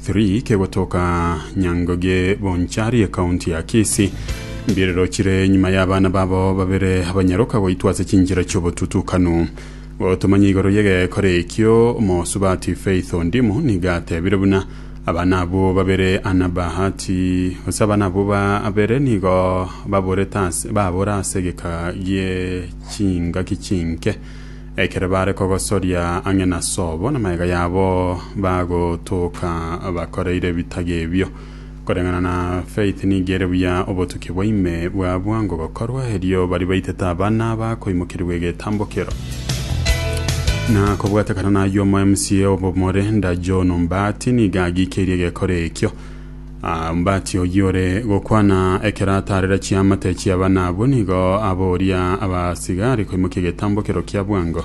3 kegotoka Nyangoge Bonchari ekaunti ya Kisii mbirerochire nyuma y'abana babo babere abanyaroka goitwa ase chinchera chi'obotutukanu gotomanya igoro y'egekore ekio omosubati Faith Ondimu niga atebire buna abana abwo babere ana Bahati ase abana abwo babere nigo baborete ase babora ase egeka gie chingaki chinke Ekero baare kogosoria ang'e na sobo namagega yabo, bagotoka bakoreire ebitaga ebio. Koreng'ana na Faith nigo ere buya obotuki bwa ime bwa bwango gokorwa, erio baria baitete abana bakoimokerigwa egetambokero. Na kobwatekana nayio omo mca obomore Ndajono Mbati nigo agikeirie egekora ekio. Aa, mbati oyio ore gokwana ekero ataarera chiamate chi'abana abwo, nigo abooria abasigari koimokia egetambo ekero kia bwango,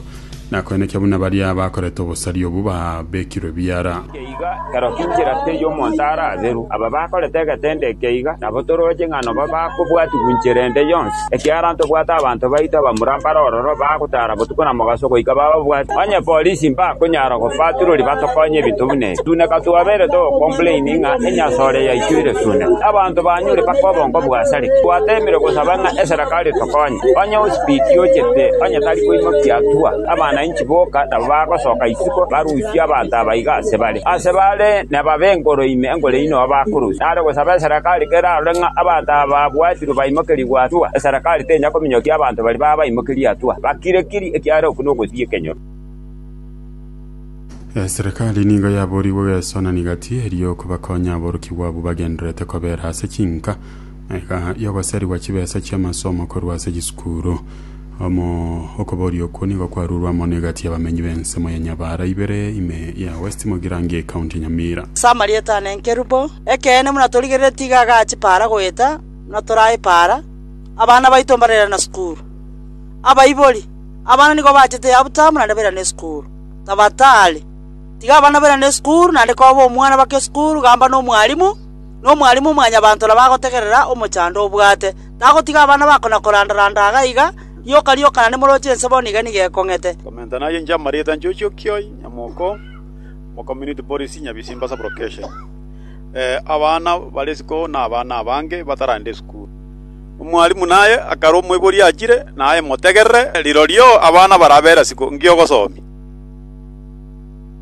na koenekia buna baria bakorete obosari obwo babekirwe biara. Inche iga, ekero tinchera tei omonto ara aberu. Aba bakorete egetende ekeiga, nabo toroche ng'a noba bakobwatigwa inchera ende yonsi. Ekiagera ntobwate abanto baito abamura mbare ororo bagotaara botuko na mogaso goika bababwate. Onye polisi mbakonyara gobatururia batokonye ebinto buna ebi, suneka twabeire togocomplaini ng'a enyasore yaito ere suneka, abanto banyure mpaka obongo bwasareke. Twateemire gosaba ng'a eserekari etokonye. Onye osibiti ochete onye tari koimokia atua, abana inchi boka nabo bagosoka isiko barusie abanto aba iga ase bare. Ase bare nebabe enkoro ime enkoro eyio nigo bakorusia. Nare gosaba eserekari kerarore ng'a abanto aba babwati. Ekero baimokerigwe Atua, eserekari tenya kominyokia abanto baria babaimokirie Atua, bakire-kirie, ekiagera okwo nogosibia ekenyoro. Eserekari nigo yaboorigwe geso na nigati eria okobakonya aborokigwa abwo bagendererete kobera ase chinka na eka y'ogoserigwa chibesa chi'amasomo korwa ase chisukuru. Amo okoboria okwo nigo kwarurwe amo n'egati y'abamenyi b'ensemo ya Nyabaara ibere ime ya West Mogirango y'Ecounty ya Nyamira. Ase amarieta ane enkerubo, ekeene buna torigerere tiga agachi para goeta buna torae para, abana baito mbarairana sukuru. Abaibori, abana nigo bachete yabutamu naende bairane sukuru. Tabatari, tiga abana bairane sukuru naende koba omwana bake sukuru gamba nomwalimu, nomwalimu mwanyabanto nabo agotegerera omochando obwate. Tagotiga abana bako na koranda‐randa iga na iga, rioka rioka naende moroche ense bono iga nigo ekong'ete. Commenta naye inche amarieta nchochi okioi nyamoko omo community Boris Nyabisimba sub location eh abana bare isiko na abana abange bataragenda esukuru omwalimu naye akare omoibori achire naye motegerere rirorio abana barabera isiko ngi'ogosomia.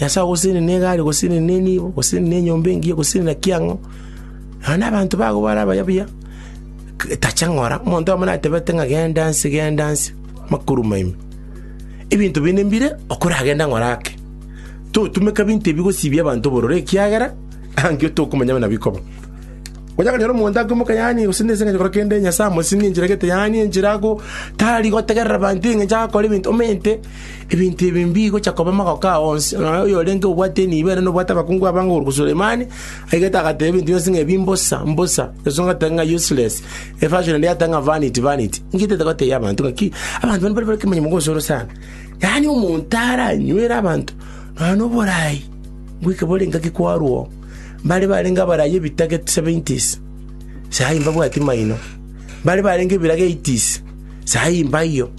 Nyasae ogosesenire negari, ogosesenire nenibo, ogosesenire nenyomba engiya, ogosesenire na kiang'o, nonya na abanto bago bare abaye buya, tacha ng'ora, omonto oyomo natebete ng'a genda nse, genda nse, makoruma ime. Ebinto binde mbire, okoragende ng'ora ake. Totumeka ebinto ebi gosibia abanto obororo ekiagera angio tokomanya buna bikoba. Onya konyora omonto akoimoka yaani gose nese ng'acha gokora kende Nyasae amosinge enchera gete yaani enchera ago, tari gotegerera abanto eng'encho agakora ebinto omente. Ebinto ebi mbigocha koba magoko ao onsi, nonya oyorenge obwate enibo ere nobwate abakungu abange okoruka Sulemani, aigete agateba ebinto bionsi ng'a ebi mbosa, mbosa, esusu ngoteba ng'a useless, efashion eria yateba ng'a vanity, vanity. Ngietete goteebia abanto ng'a ki, abanto bane mbare bare ekemanyererio mogosoro sana. Yaani omonto aranywere abanto nonya noborai bweka bore engaki kwarwa oo, mbare barenge abarai ebitaga seventies, sahi mbabwati maino, mbare barenge ebiraga eighties. Saa eye mbaiyo,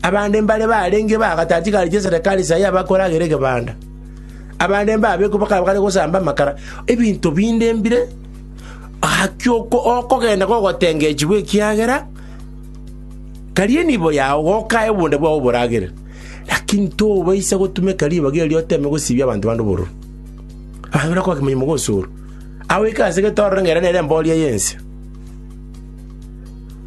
abande mbare barenge bagatatigareti eserekari saa eye abakore agere egebanda. Abande mbabekwe bakaba bare gosamba amakara, ebinto binde mbire gaki okogenda gogotengechigwa ekiagera karie nibo yao gokae obonda bwao oboragere. Lakini tobaisa gotumeka ribaga erio oteme gosibia abanto bande obororo. Abanto buna kwakimanya mogosoro. Agoika ase getororo ng'erere nere emboria y'ense.